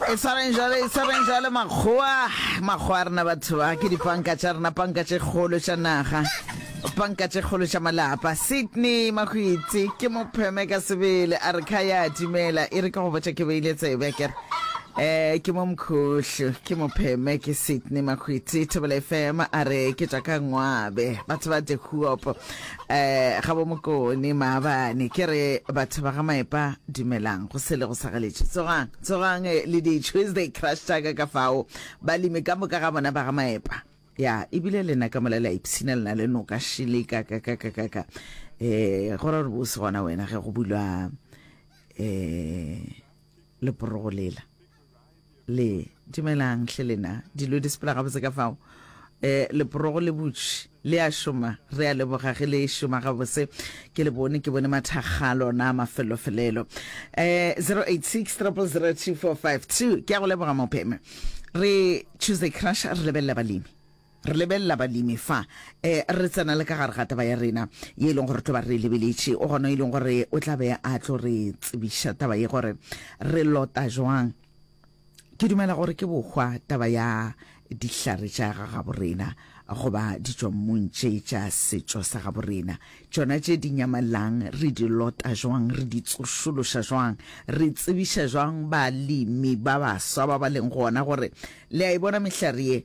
e tshwareng jale e tshwareng jale makgowa makgowa a rena batho ba ke dipanka tša rena panka tše kgolo tša naga panka tše kgolo tša malapa sydney mahwitse ke mopheme ka sebele a re kha ya timela e re ka go botša ke beile tsebe kere eh ke mo mkhohlo ke mopheme ke sydney makhwiti thobela fm a re ke tša ka ngwabe batho ba dehuopo Eh, gabo mokone maabane ke re batho ba ga maepa dumelang go sele go sagaletše tsogang tsogang eh, le di tuesday crush tsaka ka fao balemi ka moka ga bona ba ga maepa ya ebile lena ka mola la ipshina lena le noka šile ka ka ka ka ka ka eh go ra gore bose gona wena ge go bulwa eh leporogo lela le dumelang hle lena dilo di sepela gabotse ka fao eh leporogo le butši le a šoma re a leboga ge le šoma gabotse ke le bone ke bone mathakga lona mafelofelelo eh 0863002452 ke ya go leboga mopheme re choose a crush re lebelela balemi Re lebelela balemi fa e re tsena le ka gare ga taba ya rena ye e leng gore re tlo ba re lebeletše. O gona e leng gore o tla be a tlo re tsebiša taba ye gore re lota jwang. Ke dumela gore ke bohwa taba ya dihlare tša ga gabo rena goba ditšwammung tše tša setšo sa gabo rena, tšona tše di nyamalang re di lota jwang, re di tsošološa jwang, re tsebiša jwang balemi ba baswa ba ba leng gona gore le a e bona mehlare ye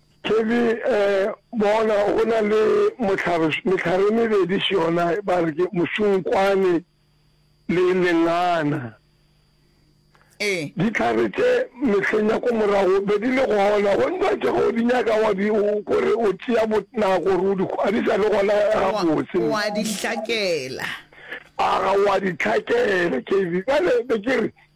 Thebe, Ee, bona go na le mohlare, mehlare e mebedi se yona, ba re ke mosunkwane le lengana. Ee. Dihlare tše mehleng ya ko morago be di le gona, go ntwa tše go di nyaka wa di kore o tšea botnako gore o di a di sa le gona gabotse. Wa di hlakela. A ga wa di hlakela, Thebe. Bjale be ke re.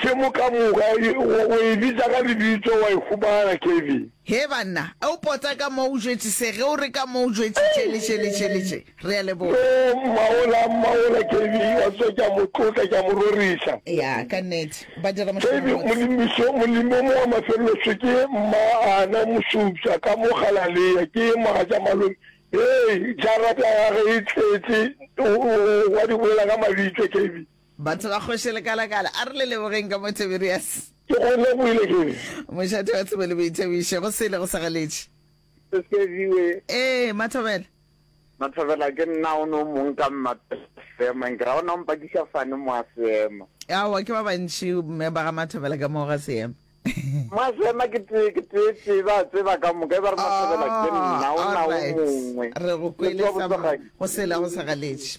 Hle moka moka, wa e bitsa ka lebitso, wa e humana, Kevin. Hee, banna, e'o pota ka mo o jwetšise ge o re ka mo o jwetšitše letšeletšeletše. Re a leboga. Yoo, mmawola, mmawola, Kevin, wa tseba, ke a mo tlotla, ke a mo rorisa. Ya, ka nnete. Ba dira mošomo Kevin, mobotse. Molimiso, molimi o mongwe wa mafelelo se ke mma ana Mosupša, ka mo Galalea, ke mogatša malome. Hee, jarata ya gagwe e tletše, o, o, o a di bolela ka mabitla, Kevin. Batho ba kgoši lekalakala, a re le lebogeng ka mo Tiberias. Ke go lebohile ke. Mošate wa tsebo le boithabišo, go sele go sa galetše. Se segiwe. Ee, Mathobela. Mathobela, ke nna o no mong ka mma seemang, ke ra o na o mpakiša fane mo a seema. Aowa, ke ba bantši mme ba ga Mathobela ka moo ga seema. Mo a seema ke tee, ke tee tee, ba tseba ka moka, e ba re Mathobela ke nna o na o mongwe. Re go kwele sa mma, go sele go sa galetše.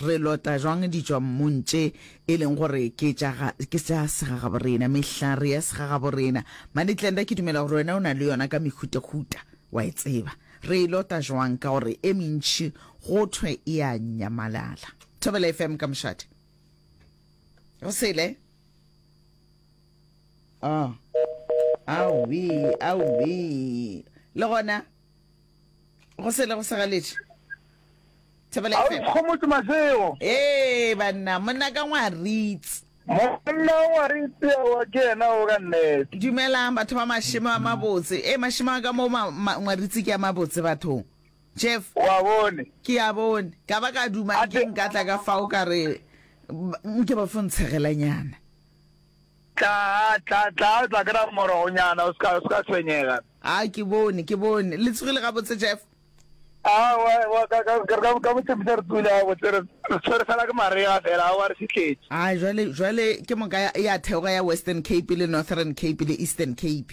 Re lota jwang ditšwammung tše e leng gore ke tša ga, ke tša segagaborena, mehlare ya segagaborena? Mane Glenda, ke dumela gore wena o na le yona ka mehutahuta, wa e tseba. Re e lota jwang? Ka gore e mentši go thwe e a nyamalala. Thobela FM ka mošate. Re sele. Oh. Aowi, aowi. Le gona. go sele go segaletše thebele a o fm ikgomotse masego ee banna monna ka ngwaritse monna o ngwaritse wa ke yena o ka nnete dumelang batho ba mašemo a mabotse e mašemo a ka mo ma- ma- ngwaritse ke a mabotse bathong jeff wa bone ke a bone ka ba ka dumang ke Ate- nka tla ka fao ka re ba- nke ba fo ntshegelanyana Tla, tla, tla, o tla kry-a morogonyana, o se ka, o se ka tshwenyega. A, ke bone, ke bone. Le tsogile gabotse, Jeff? A, wa, wa, ka, ka, ka, ka, ka botshepisa re tsogile gabotse, re, re tshwere fela ke marega fela, a wa re fitlhetše. A, jwale, jwale ke moka ya, ya theoga ya Western Cape le Northern Cape le Eastern Cape.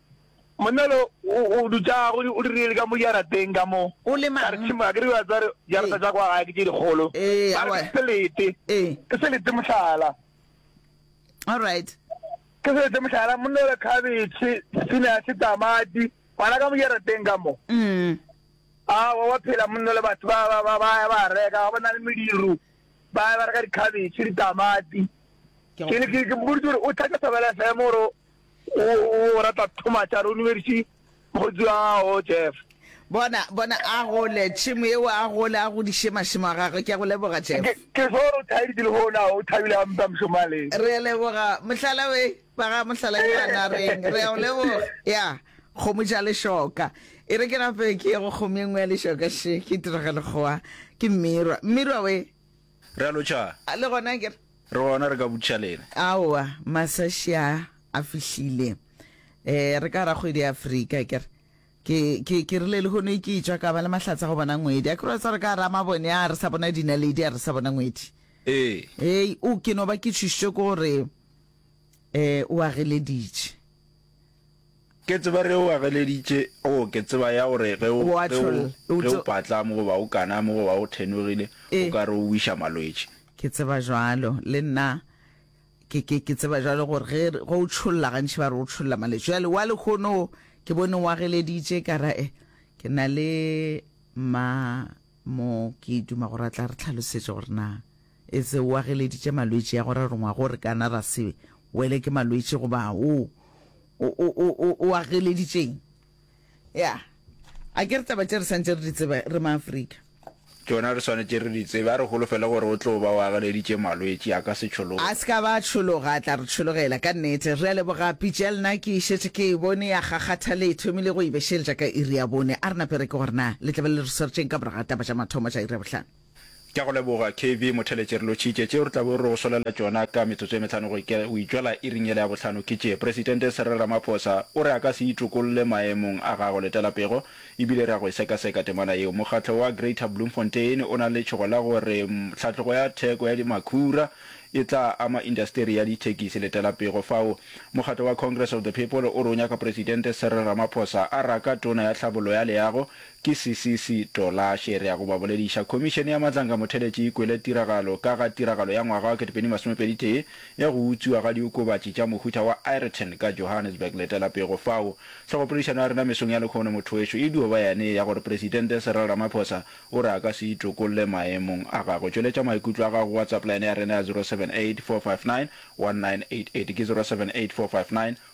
Monna lo o dutša go o dirile le ka mo jarateng ka mo. O le mang? Ka re tšhimo, a ke re wa tsare jarata tša kwa gae ke tše dikgolo. Ee, Ba re awa. ke selete. Ee. Ke selete mohlala. All right. Ke selete mohlala monna le khabetšhe, spinach, tamati, gona ka mo jarateng ka mo. Mm. Awa wa phela monna le batho ba ba ba ba ya ba reka ga bona le mediro. Ba ya ba reka dikhabetšhe, ditamati. Ke Ke ne ke ke boditse gore o thatša Thobela FM gore O, o rata Thomas, a re o numediše mokgotsi wa gago, Jeff. Bona, bona, a gole, tšhemo yeo, a gole, a godiše mašemo a gagwe. Ke a go leboga, Jeff. Ke, ke swo gore o thaeditše le gona, o thabile gampe a mošomo a le. Re a leboga, mohlala we, ba ga mohlala ke a nareng. Re a o leboga, ya, kgomo ja lešoka. E re ke nape ke ye go kgomo e nngwe ya lešoka, še, ke tiragale goa, ke mmirwa, mmirwa we. Re a lo tšha. A le gona ke re. Re gona re ka butša lena. Aowa, masaši a a fihlile. Eh, re ka ra kgwedi ya Afrika ke re. Ke, ke, ke rile lehono e ke e tšwa ka ba le mahlatse a go bona ngwedi. A ke re wa tseba re ka ra mabone a re sa bona dinaledi a re sa bona ngwedi. Ee. Hei, o ke no ba ke tšhošitšwe ke gore eh o a geleditše. Ke tseba ge o ageleditše, oo, ke tseba ya gore ge o, ge o, ge o patla mo goba o kana mo goba o thenogile, o ka re o wiša malwetši. Ke tseba bjalo, le nna ke, ke, ke tseba bjalo gore ge, ge o tšholla, gantši ba re o tšholla malwetši. Bjale wa lehono o, ke bone o ageleditše, ka ra, eh, ke na le mma mo, ke duma gore a tla re tlhalosetša gore na E se o ageleditše malwetši a go rarongwa go re kana ra se wele ke malwetši goba o, o, o, o, o, o ageleditše'ng? Ya. A ke re taba tše re swantše re di tsebe, re Maafrika? Tšona re swanetše re di tsebe. A re holofele gore o tlo ba o ageleditše malwetši, a ka se tšhologe. A se ka ba a tšhologa, a tla re tšhologela. Ka nnete. Re a leboga, Pijel. Na ke šetše ke e bone ya kgakgatha le thomile go e bešeletša ka iri ya bone. A re na pere ke gore na le tla be le re swertše'ng ka morago ga taba tša mathomo tša iri ya bohlano. Ke a go leboga, KB. Motheletše, re lotšhitše tšeo re tla bo re go swalela tšona ka metsotso e metlhano go itšwela iring yela ya bohlano. Ke tše, Presidente Cyril Ramaphosa o re a ka se itokolle maemong a gagwe letela pego e bile re a go e sekaseka temana yeo. Mokgatlo wa Greater Bloemfontein o na le tšhogo la go re tlhatlogo ya theko ya makhura e tla ama indasteri ya dithekisi letela pego fao. Mokgatlo wa Congress of the People o re o nyaka Presidente Cyril Ramaphosa a raka Tona ya Tlhabollo ya Leago, Ke Sisisi Tola Shere ya go ba bolediša. Khomišene ya Matlanka Motheleci e kwele tiragalo ka ga tiragalo ya ngwaga wa ketepedi masomepedi tee ya go utswiwa ga diokobatši tša mohuta wa Ayrton ka Johannesburg. Letela pego fao. Hlogopoledišano ya rena mesong ya lekhono mothwešu e dio ba yane ya gore Presidente Cyril Ramaphosa o re a ka se itokolle maemong a gagwe. Tšweletša maikutlo a gago go WhatsApp line ya rena ya 0784591988 ke 0784591988.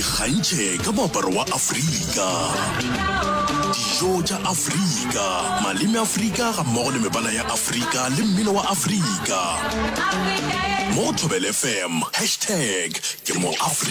ikgantšhe ka moaparo wa afrika dijo tša afrika maleme afrika ga mmogo le mebala ya afrika le mmino wa afrika mo go thobel fm hashtag ke mo afrika